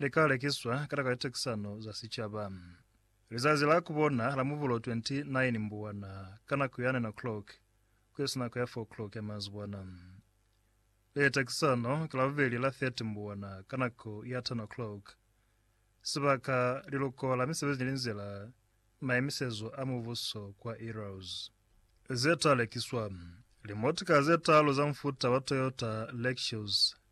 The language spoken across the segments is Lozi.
li ka lekiswa ka taka litekisano za sicaba. Lizazi la ku bona la Mubulo 29 Mbuwana ka nako ya 9 o'clock ku esi nako ya 4 o'clock ya mazibwana. Litekisano ki Labubeli la 30 Mbuwana ka nako ya 10 o'clock. Sibaka, Liluko la Misebezi ni Linzila, Maimisezo a Mubuso kwa Eros. Ze ta lekiswa, Limotika ze taalu za mufuta wa Toyota Lexus.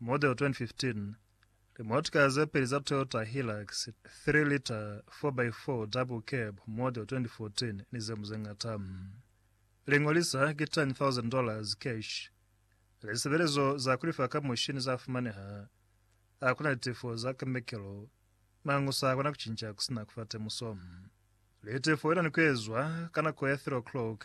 Model 2015, Limotika ze peli za Toyota Hilux 3 liter 4x4 double cab model 2014 ni zemu zeñata. Liñolisa ki tani 1,000 dollars cash. Lisebelezo za kulifa ka mushini za fumaneha. Akuna litefo za kemikelo. Mañu sa kona kucinca kusina kufa temuso. Litefo ina ni kuezwa ka nako ya 3 o'clock